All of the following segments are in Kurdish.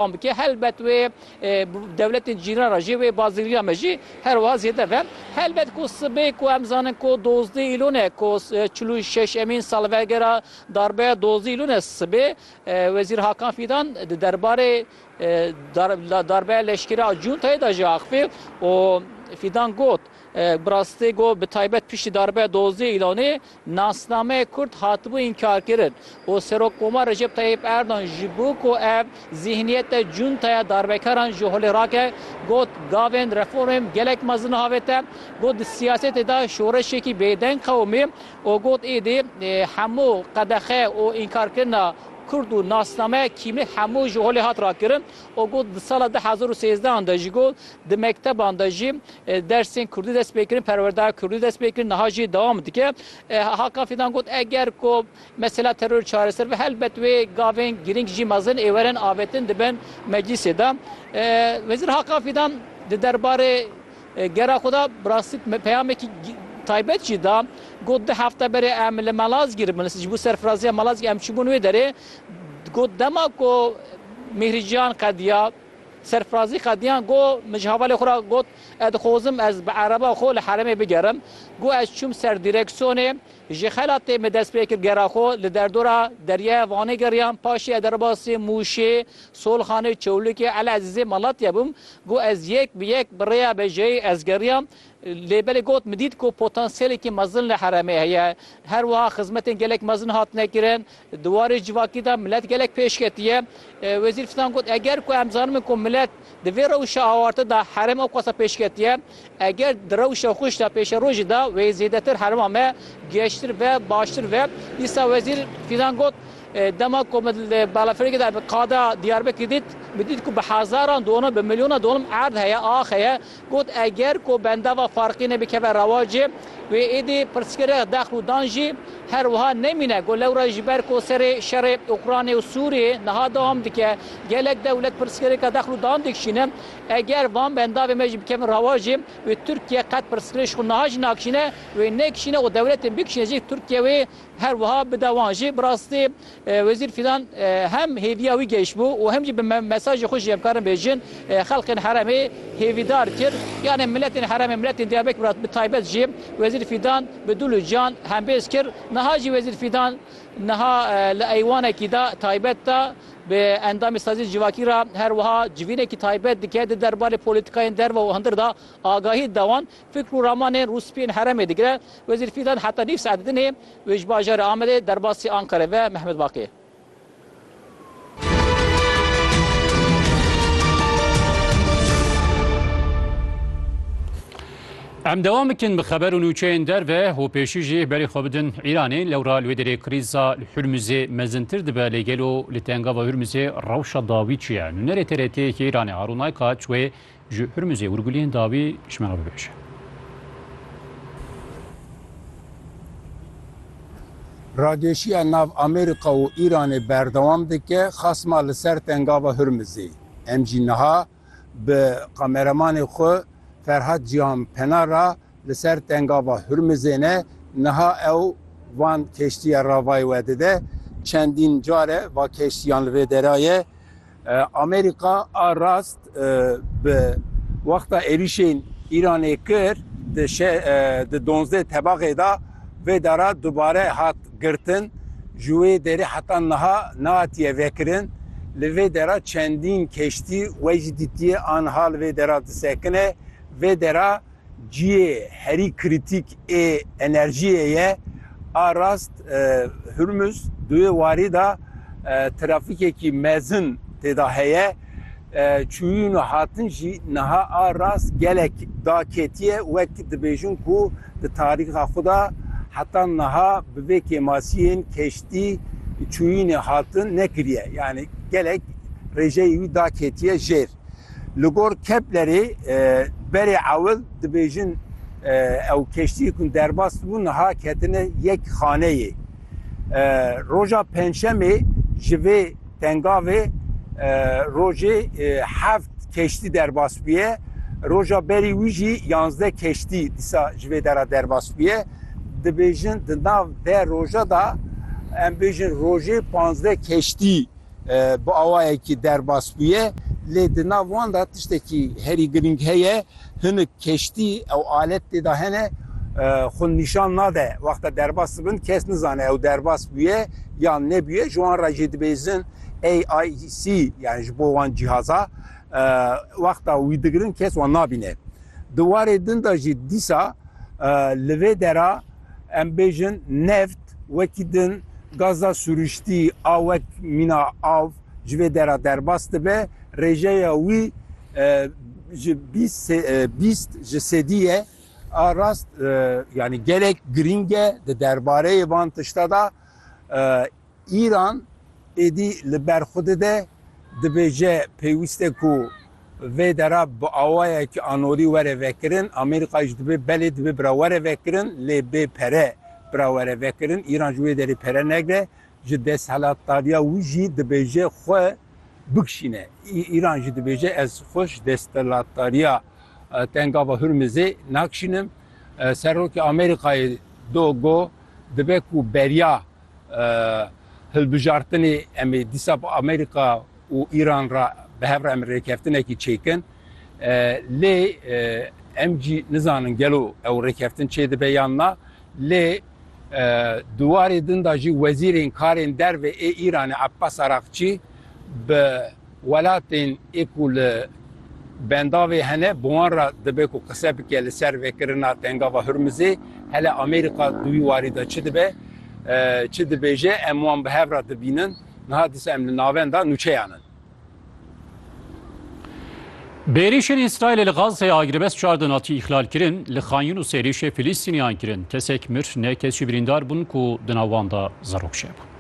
Wan bike helbet wê dewletên cîran re jî wê bazirgîriya me jî her wiha zêde be. Helbet ku sibê ku em zanin ku dozdeh Îlûn e ku çil û şeşemîn salvegera darbeya dozdeh Îlûn e sibê Wezîr Hakan Fîdan di derbarê darbeya leşkerî a cuntayê de jî axivî û Fîdan got, Bi rastî got bi taybet piştî darbeya dozdeh Îlûnê Nasnameyê Kurd hatibû înkarkirin û Serokkomar Recep Tayyîp Erdogan ji bo ku ev zîhniyete cuntaya darbekaran ji holê rake, got, Gavên reformêm gelek mezin avête, got di siyasetê de şoreşekî bêdeng qewimî û got êdî hemû qedexe û înkarkirina Kurd û nasnameya kîmî hemû ji holê hat rakirin û got di sala du hezar û sêzdehan de ji Di mekteban de jî dersên kurdî dest pê kirin, perwerdeya kurdî dest pê kirin, niha jî dewam dike. Hakan Fîdan got, Eger ku mesela terorê çareser be, helbet wê gavên girîng jî mezin ê werin avêtin dibin meclîsê de. Wezîr Hakan Fîdan di derbarê gera xwe de bi rastî peyamekî taybet jî da. Got, Du hefte berê em li Malazgîr bûn, ji bo serfiraziya Malazgîr em çûbûn wê derê. Got, Dema ku Mîhrî Cihan qediya, Serfirazî qediyan ku min ji hevalê xwe re got, Ez dixwazim ez bi ereba xwe li herêmê bigerim. Ku ez çûm ser dîreksiyonê, ji xelatê min dest pê kir gera xwe li derdora deryaya Vanê geriyan. Paşê ez derbasî Mûşê, Solxanê, Çewlikê, Elezîzê, Malatya bûm. Ku ez yek bi yek bi rêya bejeyê ez geriyam. Lê belê got, Min dît ku potansiyelekî mezin li herêmê heye. Her wiha xizmetên gelek mezin hatine kirin. Di warê civakî de milet gelek pêş ketiye. Wezîr Fidan got, Eger ku em zanibin ku milet di vê rewşa awarte de herêm awqasa pêş ketiye, eger di rewşa xweş de pêşerojê de wê zêdetir herêma me giheştir ve, baştir ve. Dîsa Wezîr Fidan got, Dema ku min li balafirgê de qada Diyarbekir dît, min dît ku bi hezaran dolm, bi milyonan dolm erd heye, ax heye. Got, Eger ku bendava Farqînê bikeve rewacê, wê êdî pirsgirêx dexl û dan jî her wiha nemîne. Got, Lewra ji ber ku serê şerê Ukraynê û Sûriyê niha dewam dike, gelek dewlet pirsgirêka dexl û dan dikişîne. Eger van bendavên me jî bikevin rewacê, wê Tirkiye qet pirsgirêk ji xwe niha jî nakişîne, wê nekişîne û dewletên bikişîne jî Tirkiye wê her wiha bide wan. Jî bi rastî Wezîr Fîdan hem hêviya wî gehişbû û hem jî bi mesajê xwe jî em karin bêjin xelkên herêmê hêvîdar kir. Yanê miletên herêmê miletên Diyarbekir re bi taybet jî Wezîr Fîdan bi dil û can hembêz kir. Niha jî Wezîr Fîdan niha li eywanekî de taybet de bi endamê Saziyê Civakî re her wiha civînekî taybet dike di derbarê polîtîkayên derve û hundir de agahî dide wan. Fikr û ramanên Rûspî yên herêmê digire, Wezîr Fîdan heta nîv saet di din e wê ji bajarê Amedê derbasî Ankarê ve Mehmet Baqî. Em dewam bikin bi xeber û nûçeyên derve û pêşî jî berê xwe bidin Îranê. Lewra li wê derê krîza li Hurmuzê mezintir dibe lê gelo li tengava Hurmuzê rewşa dawî çi ye? Nûnerê TRT'ê yekê Îranê Harûn Aykaç wê Ji Urmizê Urgulên dawî ji me re bibêje. Rageşiya nav Amerîka û Îranê berdewam dike, xasma li ser tengava Hurmizê. Em jî niha bi kameramanê xwe Ferhat Cîhan Pena re li ser tengava Hurmizê ne, niha ew van keştiya ravayê we dide. Çendîn car e va keştiyan li vê dera ye. Amerîka a rast bi wexta êrîşên Îranê kir di di donzdeh tebaxê de vê dara dubare hat girtin. Ji wê derê heta niha nehatiye vekirin. Li vê dera çendîn keştî wey jî dîtiye aniha li vê dera disekine. Vê dera Cihê herî krîtîk ê enerjiyê ye a rast Hurmuz di wê warî de trafîkekî mezin têda heye. Çûyîn û hatin jî niha a rast gelek daketiye wek dibêjin ku di tarîxa xwe de heta niha bi vê kêmasiyên keştî çûyînê hatin nekiriye. Yanî gelek rêjeyê wî daketiye jêr. Li gor Keplerê berê ewil dibêjin ew keştiyê ku derbas dibû niha ketine yek xaneyê. Roja Pençemê ji vê tengavê rojê heft keştî derbas bûye. Roja berî wî jî yanzdeh keştî dîsa ji vê dera derbas bûye. Dibêjin di nav de roja da em bêjin rojê panzdeh keştî Bi awayekî derbas bûye lê di nav wan de tiştekî herî girîng heye, hinik keştî ew alet tê de hene xwe nîşan nade. Wexta derbas dibin kes nizane ew derbas bûye yan nebûye. Ji wan re jî dibêjin AIC yani ji bo wan cîhaza wexta wî digirin kes wan nabîne. Di warê din de jî dîsa li vê dera, Em bêjin neft wekî din gaza sûriştî a wek mîna av ji vê dera derbas dibe, rêjeya wî ji bîst ji sedî ye. A rast yanî gelek girîng e di derbareyê van tişta de Îran êdî li ber xwe dide, dibêje pêwîst e ku vê dera bi awayekî anorî were vekirin, Amerîka jî dibê belê dibê bira were vekirin lê bê pere bira were vekirin. Îran ji wê derê pere negre, ji desthilatdariya wî jî dibêje xwe bikişîne. Îran jî dibêje ez xwe ji desthilatdariya Tengava Hurmizê nakişînim. Serokê Amerîkayê Dogo dibe ku beriya hilbijartinê em ê dîsa bi Amerîka û Îran re bi hev re em rêkeftinekî çêkin. Lê em jî nizanin gelo ew rêkeftin çê dibe yan na. Lê di warê din de jî wezîrên karên derve ê Îranê Abbas Araqçî bi Welatên ê ku li bendavê hene bi wan re dibe ku qise bike li ser vekirina Tengava Hurmizê. Hele Amerîka di wî warî de çi dibe, çi dibêje em wan bi hev re dibînin. Niha dîsa em li navenda nûçeyan in. Bêrîşên Îsraîlê li Gazeyê agiribest çar din hatiye îxlalkirin, li Xan Yûnusê êrîşê Filîstîniyan kirin, kesek mir, neh kes jî birîndar bûn ku di nav wan de zerok çêbûn.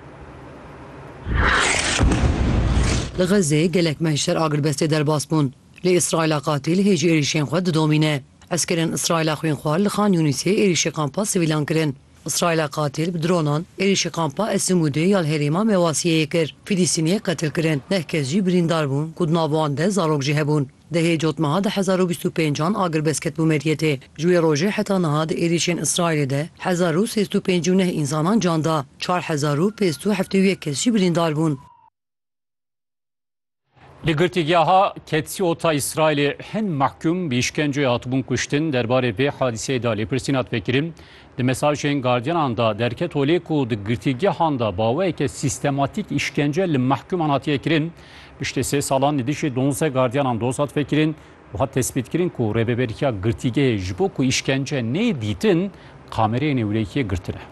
Li Xezê gelek meh ji ser agiribestê derbas bûn. Lê Îsraîla qatîl hê jî êrîşên xwe didomîne. Eskerên Îsraîla xwînxwar li Xan Yûnîsê êrîşê kampa sivîlan kirin. Îsraîla qatîl bi dronan êrîşê kampa Esimûdê ya li herêma Mewasiyeyê kir. Fîlîstîniyek qetil kirin. Neh kes jî birîndar bûn ku di nav wan de zarok jî hebûn. Dehê cotmeha di hezar û bîst û pênc an agirvez ketibû Meryetê. Ji wê rojê heta niha di êrîşên Îsraîlê de hezar û sêst û pêncî û neh însanan can da, çar hezar û pêst û heftê û yek kes jî birîndar bûn. Li girtîgeha Ketziota Îsraîlê hin mehkûm bi îşkenceyê hatibûn kuştin. Derbarê vê hadîseyê de lêpirsîn hat vekirin. Di mesajên gardiyanan de derket holê ku di girtîgehan de baweyeke sîstematîk îşkence li mehkûman hatiye kirin. Piştî sê salan li dijî donzdeh gardiyanan doz hat vekirin û hat tespîtkirin ku rêveberiya girtîgehê ji bo ku îşkence nê dîtin kamereyê nêwirêkiyê girtine.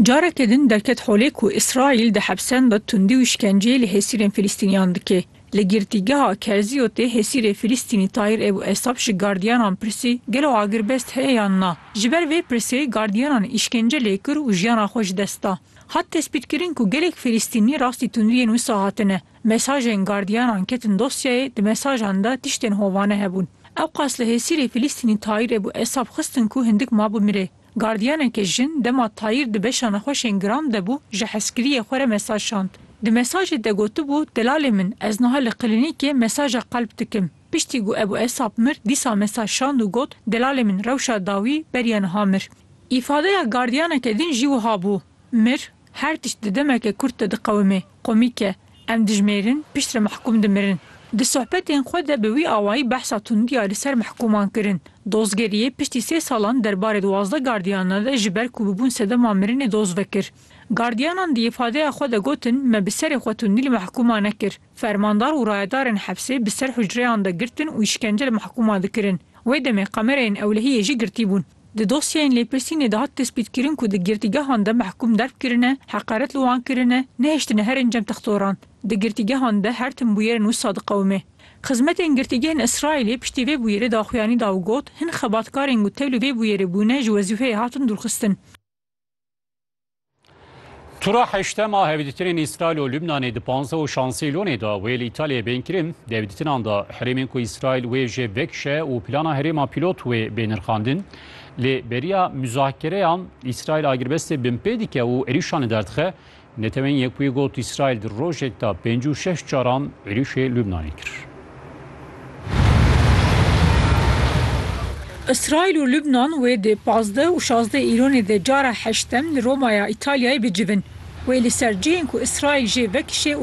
Careke din derket holê ku Îsraîl di hepsan de tundî û îşkenceyê li hêsîrên Filîstîniyan dike. Li girtîgeha Kerziyotê Hesîrê Filistînî Tayir Ebû Esab ji gardiyanan pirsî, Gelo agirbest heye yan na? Ji ber vê pirsê gardiyanan îşkence lê kir û jiyana xwe ji dest da. Hat tespîtkirin ku gelek Filistînî rastî tundiyên wisa hatine. Mesajên gardiyanan ketin dosyayê, di mesajan de tiştên hovane hebûn. Ewqas li Hesîrê Filistînî Tayir Ebû Esab xistin ku hindik mabû mirê. Gardiyaneke jin dema tayîr di beşa nexweşên Gram de bû ji hezkiriyê xwe re mesaj şand. Di mesajê de gotibû, Delalê min, ez niha li klinîkê mesaja qelp dikim. Piştî ku Ebû Esap mir dîsa mesaj şand û got, Delalê min rewşa dawî beriya niha mir. Îfadeya gardiyaneke din jî wiha bû, Mir? Her tişt di demeke kurt de diqewime, komîk e. Em dijmêrin, piştre mehkûm dimirin. Di sohbetên xwe de bi wî awayî behsa tundiya li ser mehkûman kirin. Dozgeriyê piştî sê salan derbarê duwazdeh gardiyana de ji ber ku bibûn sedema mirinê doz vekir. Gardiyanan di îfadeya xwe de gotin me bi serê xwe tundî li mehkûma nekir. Fermandar û rayedarên hepsê bi ser hucreyan de girtin û îşkence li mehkûma dikirin. Wê demê kamereyên ewlehiyê jî girtîbûn. Di dosyeyên lêpirsînê dihat destpêtkirin ku di girtîgehan de mehkûm derb kirine, heqaret li wan kirine, nehiştine her encam textoran. Di girtîgehan de her tim bûyerên wisa diqewime. Xizmetên girtîgehên Îsraîlê piştî vê bûyerê daxuyanî da û got, Hin xebatkarên ku tevlî vê bûyerê bûne ji wezîfeyê hatin dûrxistin. Tura heştema hevdîtinên Îsraîl û Lubnanê di panzdeh û şansêlonê de wê li Îtalyayê bên kirin. Devdîtinan de herêmên ku Îsraîl wê jê vekişe û plana herêma pîlot wê bê nirxandin. Lê beriya muzakereyan Îsraîl agirbestê binpê dike û êrîşan li derdixe. Neteweyên Yekbûyî got Îsraîl di rojek de pêncî û şeş caran êrîşê Lubnanê kir. Îsraîl û Lubnan wê di pazdeh û şazdeh Îronê de cara heştem li Romaya Îtalyayê bicivin. Wê li ser cihên ku Îsraîl jê vekişê,